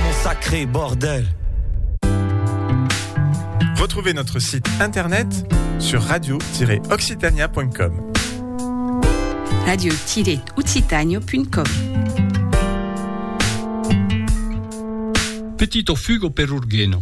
Mon sacré bordel. Retrouvez notre site internet sur radio-occitania.com. Radio-occitania.com Petit o fugo per Urgheno.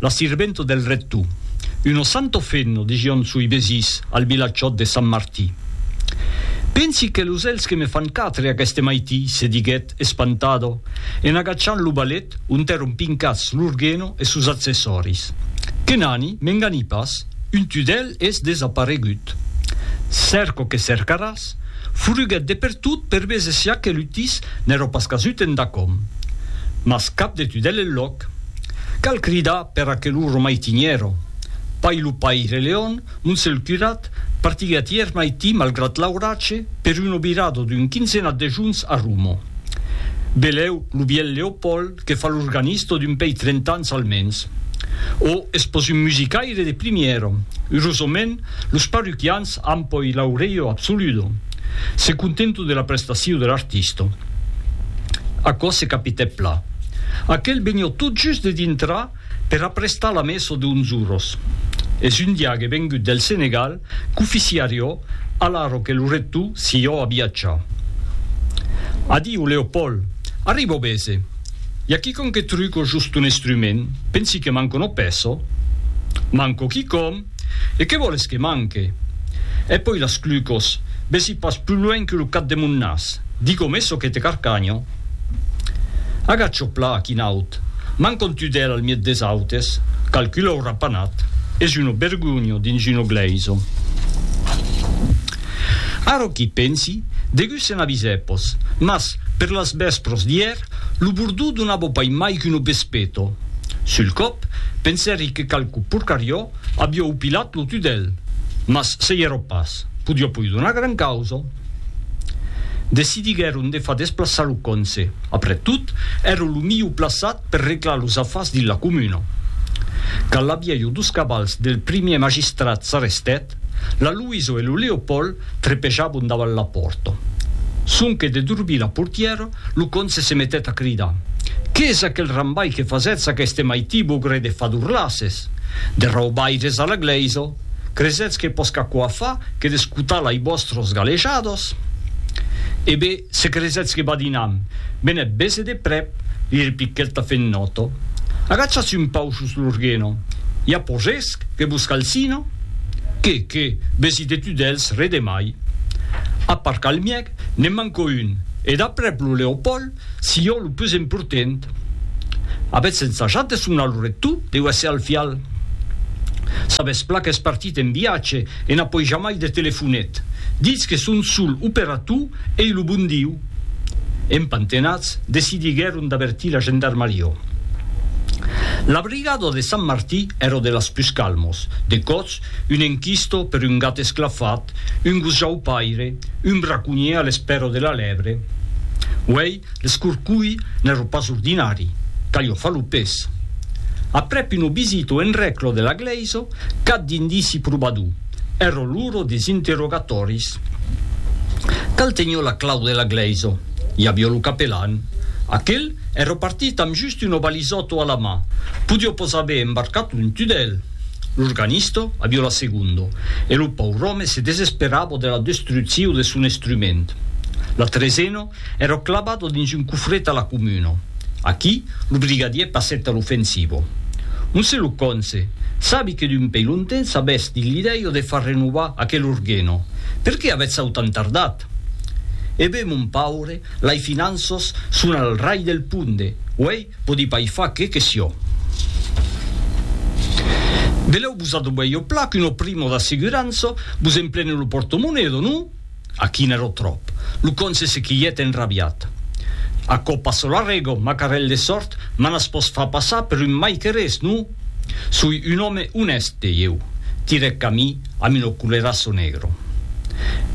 la sirventa del rector, una santa femna, dision soi vesins al vilatjòt de Sant Martí. Pensi que los elhs que me fan quatre aqueste maití, se diguèt, espantada, en agachant lo balèt ont èron pincats l'orgueno e sos accessòris. Que n'ani, m'engani pas, un tudèl es desaparegut. Cèrca que cercaràs, furuguèt de pertot per veser si aquel utís n'èra pas casut endacòm. Mas cap de tudèl enlòc. Cal cridar per a que lo romaitinièro, Pai lo paire Leon, Montsèl Curat, partigui a tier maití malgrat l'auratge per un obirado d'un quinzenat de juns a Rumo. Belèu lo bièlh Leopòld que fa l'organisto d'un pei trent'ans almens. O es pos un musicaire de primièro. Urosament, los parroquians an poi l'aureio absoludo. Se contenton de la prestacion de l'artisto. Aquò se capitèt plan. Aquel venió tot just de dintrar per aprestar la meso de Unzuros. Es un diague vengut del Senegal qu'oficiarió alaro que lo recto s'ió a viatjar. Adiu, Leopold! Arribo bese! I a quiconque truco just un estrument, pensi que manco no peso? Manco quicòm! E que vòles que manque? E poi las clucos, vesi pas plus luenh que lo cap de mon nas, digo me çò que te carcanho. Agach'o pla a quin aut, m'an contudèl al miet des autes, calcula o rapanat, es uno bergunho dins uno gleiso. Ara qu'i pensi, degusse n'avisè pos, mas, per las vèspros d'ièr, Lo bordó donava pas mai qu'un obespeto. Sul còp, pensèri que qualque porcariò aviá opilat lo tudèl, mas se i èra pas, podiá poi donar gran causa. Decidiguèron de far desplaçar lo conse, après tot, èra lo milhor plaçat per reglar los afars dins la comuna. Quand l'aviá jo dos cavals del primièr magistrat s'arrestèt, La Luiso e lo Leopold trepejabon davant la pòrta. Sonque de durbir la portièra, lo conse se metèt a cridar, Qu'es aquel rambai que fasètz aqueste maití bogre de fadurlasses! De raubaires a la glèisa! Cresetz que pòsc aquò a far que d'escotar lai vòstros galejados? E be, se cresetz que badinam, benèt bese de prèp, li repiquèt la fennòta. Agachatz un pauc jos l'orguena! I a pòsc que vos calcina? Que, que, vesi de tu dels re de mai. A part Calmièc, ne'n manco un, e d'aprèp lo Leopòld, si jo lo pus emportent. Avètz ensajat de sonar lo rector de USA al fial? Sabètz plan qu'es partit en viatge e n'a poi jamai de telefonet. Ditz que son sol operator ei lo bon Diu. Empantenats, decidiguèron d'avertir la gendarmarió. La brigada de Sant Martí èra de las pus calmos, de còps, un enquisto per un gat esclafat, un gos jaupaire, un braconhier a l'espèra de la lèbre. Uèi, l'escorcolh n'èra pas ordinari, calió far lo pes. Aprèp una visita en rècla de la glèisa, cap d'indici probador. Er oluro des interrogatòris. Cal tenho la clau de la glèisa. I avió lo capelan. Aquel è repartit amb just un obalisòto a la mà. Podió pos aver embarcat un tudèl. L'organista avió la segonda. E lo paur'òme se desesperava de la destrucciu de son estrument. La tresena Èro clabado dins un cofret a la comuna. Aquí, lo brigadier passèt a l'ofensivo. Onse lo conse, sabi que d'un pei longtemps s'avètz dins l'idèio de far renovar aquel orgueno, per qué avètz autant tardat? E be, mon paure, lai finanços son al rai del punde, uèi podi pai far qué que sió. Belèu vos adobei o plat qu'un oprimo d'asseguranço vos emplene lo portomonedo, non? Aqui n'èro tròp. Lo con se sequilhèt enrabiat. Aquò pas çò l'arrego, macarèl de sòrt, m'an as pòs far passar per un mai que res, non? Soi un òme onèst, dei eu, tirèc camí amb un oculeraço negro.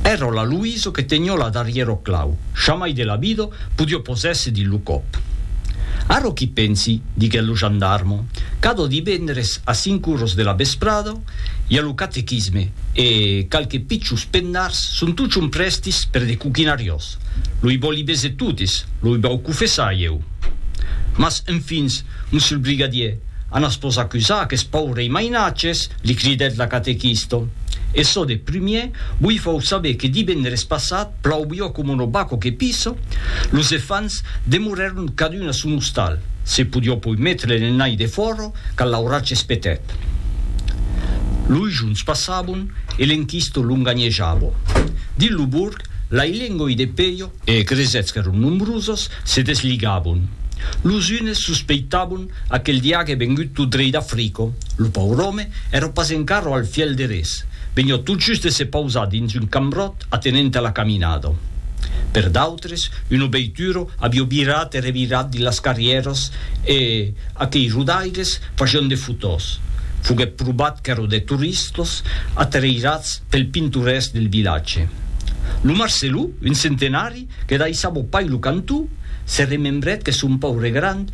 Èr'o la Luiso que tenió la darrièro clau, jamai de la vida podió posèr-se dins lo còp. Ara qu'i pensi, diguèt lo gendarmo, cadò divendres a cinc uros de la vesprada, I a lo catequisme e qualques pichos pennars son totjorn prèstis per de coquinariós. Lo i vòli bese totes, lo i vau cofessar ieu. Mas, enfin, monsieur le brigadier, anas vos acusar aqueths paurei mainatges, li cridèt la catequista. E çò de prumier, vos i fau saber que divendres passat, plauvió coma una baco que pisa, los efants demorèron cadun a son ostal, se podió poi metre l'ennai defòra, qu'a l'auratge espetèt. Loi juns passabon e l'enquisto longanhejabo. Dins lo borg, lai lengoi de peio e cresèths qu'èron nombrosos se desligabon. Los unes sospeitabon aquel diague vengut tot drei d'Africo, lo paur òme èra pas encara al fièl de res, venió tot just de se pausar dins un cambròt atenent a la caminada. Per Tres, un obeituro avió virat e revirat dins las carrièras e aquei rodaires facion de fotòs. Foguèt probat qu'èro de toristas atrairats pel pintorèsc del vilatge. Lo Marcelou, un centenari que daissava pas lo cantó, se remembrèt que son paure grand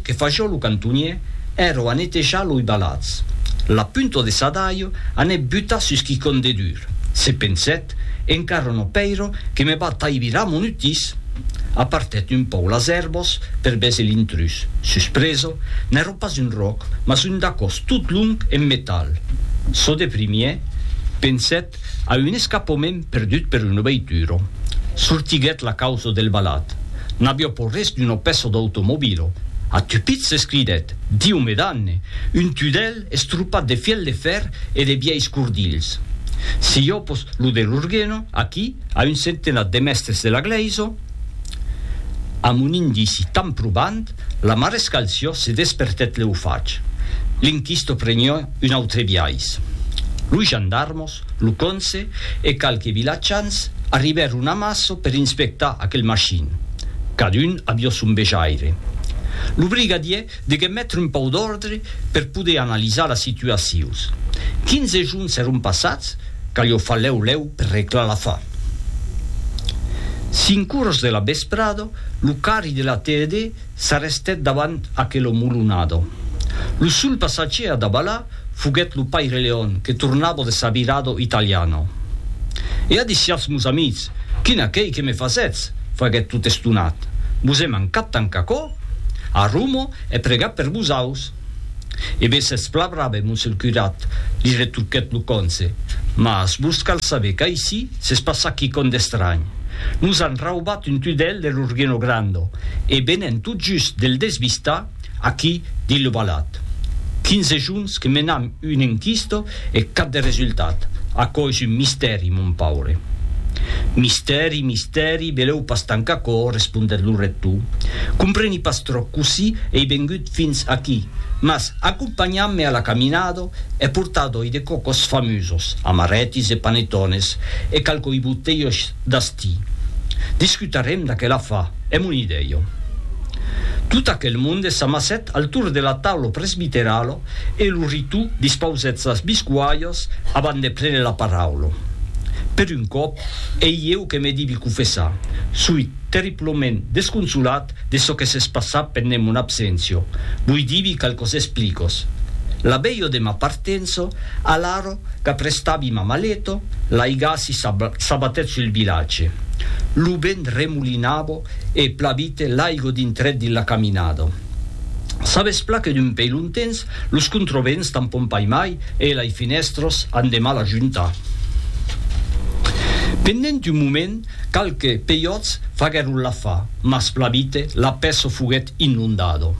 Que fa jo lo cantonier, ero a netejar loi balats. La punta de sa daio anèt butar sus quicon de dur. Se pensèt, Encara no pèiro que me va taibirar mon utís! Apartèt un pauc las èrbas per véser l'intrús. Suspresa, n'èra pas un ròc, mas un dacòs tot long en metal. Çò de primièr, pensèt a un escapament perdut per una veitura. Sortiguèt la causa del balat. N'avió pòr res d'uno pèço d'automobilo. A Tupit se scridèt, Diu me danne! un tudèl estropat de fièl de fèr e de vièis cordilhs. Si jo pos lo delorgueno, aquí, a un centenat de mèstres de la glèisa, amb un indici tan probant, la marescal Siò se despertèt leu fach. L'inquisto prenió un autre biais. Lo gendarme lo conse e qualques vilatjans arribèron a Maço per inspectar aquel machin. Cadun avió son vejaire. Lo brigadier deguèt metre un pauc d'òrdre per poder analizar la situacius. Quinze juns èron passats qu'alhò fa lèu lèu per reclar la fa. Cinc oras de la vesprada, lo carri de la TED s'arrestèt davant aquela molonada. Lo sol passatgier a davalar Foguèt lo paire Leon que tornava de sa virada italiana. E adissiatz mos amics, quin acèi que me fasètz! faguèt tot estonat. Vos è mancat tant qu'aquò? A Roma è pregat per vosaus. E be sètz plan brave, mos el curat, li retruquèt lo conse, mas vos cal saber qu'aicí s'es passat quicòm d'estranh. Nos an raubat un tudèl de l'Urgino Grande e venent tot just de'l desvistar, Aquí, dit lo balat. Quinze juns que menam un enquisto e cap de resultat. Aquò es un mistèri, mon paure. Mistèri, mistèri, belèu pas tancar aquò, respondèt lo rector. Compreni pas tròp cossí ei vengut fins aquí, mas acompanham-me a la caminada e portadoi de còcos famosos, amarètis e panetones e qualquei botelhs d'astí. Discutarem d'aquel afar. Èm un idèio. Tot aquel monde s'amassèt al torn de la taula presbiterala e lo ritò dispausèt sas biscualhas abant de prene la paraula. Per un còp, ei eu que me divi confessar, soi terriblament desconsolat de çò que s'es passat pendent mon abséncia, voi divi qualques explicas. La veia de ma partença, alara, Qu'aprestavi ma maleta, l'aigassi s'abatèt sul vilatge. Lo vent remolinava e plavite l'aigo dintrèt dins la caminada. Sabes plan que d'un pei lontens, los controvents tampon pas mai e lai fenèstras an de mal a juntar. Pendent un moment, qualques peiòts faguèron la fa. mas plabite la peço foguet inondado.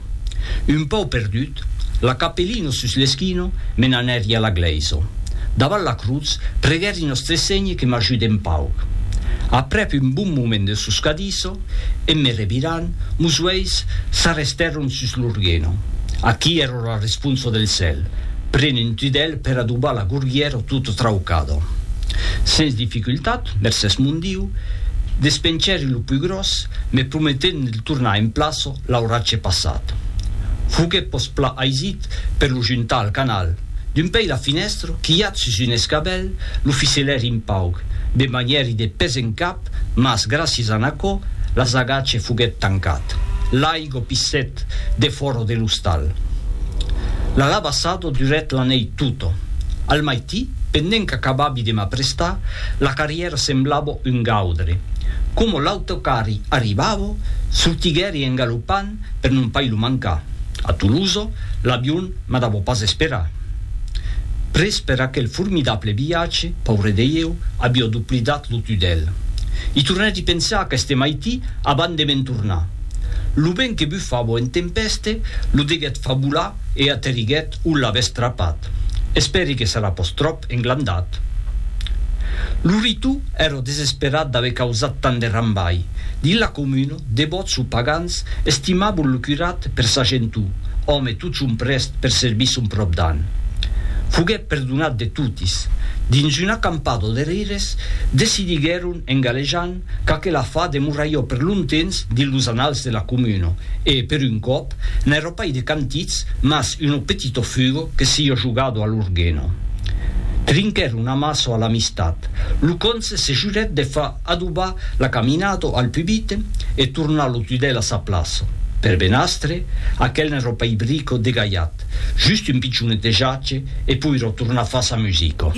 Un pau perdut, la capellino sus l'esquino, me n'anèri a la glèiso. Davant la crutz, preguèri Nòstre Sénhe que m'ajude un pauc. Aprèp un bon moment de soscadiso, en me revirant, mos uèis s'arrestèron sus l'orgueno. Aquí ero la responso del cèl, pren un tudèl per adobar la gorgièro tota traucado. Sens dificultat, Mercés mon Diu, despenchèri lo pus gròs, me prometèt de tornar en plaço l'auratge passat. Foguèt pos pla aisit per lo juntar al canal. D'un pei la finèstra, quilhat sus un escabèl, lo fiselèri un pauc, de manièri de pes en cap, mas, gràcies a n'aquò, l'asagatge foguèt tancat. L'aigua pissèt defòra de l'ostal. L'alabassado durèt la nèit tota. Al maití, Pendent qu'acabavi de m'aprestar, la carrièra semblava un gaudre. Coma l'autocarri arribava, sortiguèri engalopant per non pas lo mancar. A Tolosa, l'avion m'adava pas esperar. Pres per aquel formidable viatge, paure de ieu, avia doplidat lo tudèl. I tornèri pensar aqueste maití avant de me'n tornar. Lo vent que bufava en tempèste lo deguèt fabular e aterriguèt O l'avètz trapat. Espèri que serà pòs tròp englandat. Lo Ritu èrò desesperat d'aver causat tant de rambai. Dins la comuna, devòts o pagans estimavon lo curat per sa gentor, òme totjorn prèst per servir son pròpdan. Foguèt perdonat de totis. Dins una campada de rires, decidiguèron, en galejant, Qu'aquela fa demoraió per lontemps dins los annals de la comuna, e, per un còp, n'èra pas de cantits, mas uno petito fugo que s'ió jogado a l'orgueno. Trinquèron amasso a l'amistat. Lo conse se jurèt de far adobar la caminado al pubite e tornar lo tudèl a sa plaça. Per benastre, aquel n'èra pas brico degalhat, just un pichonete jache e poirò tornar far sa musica.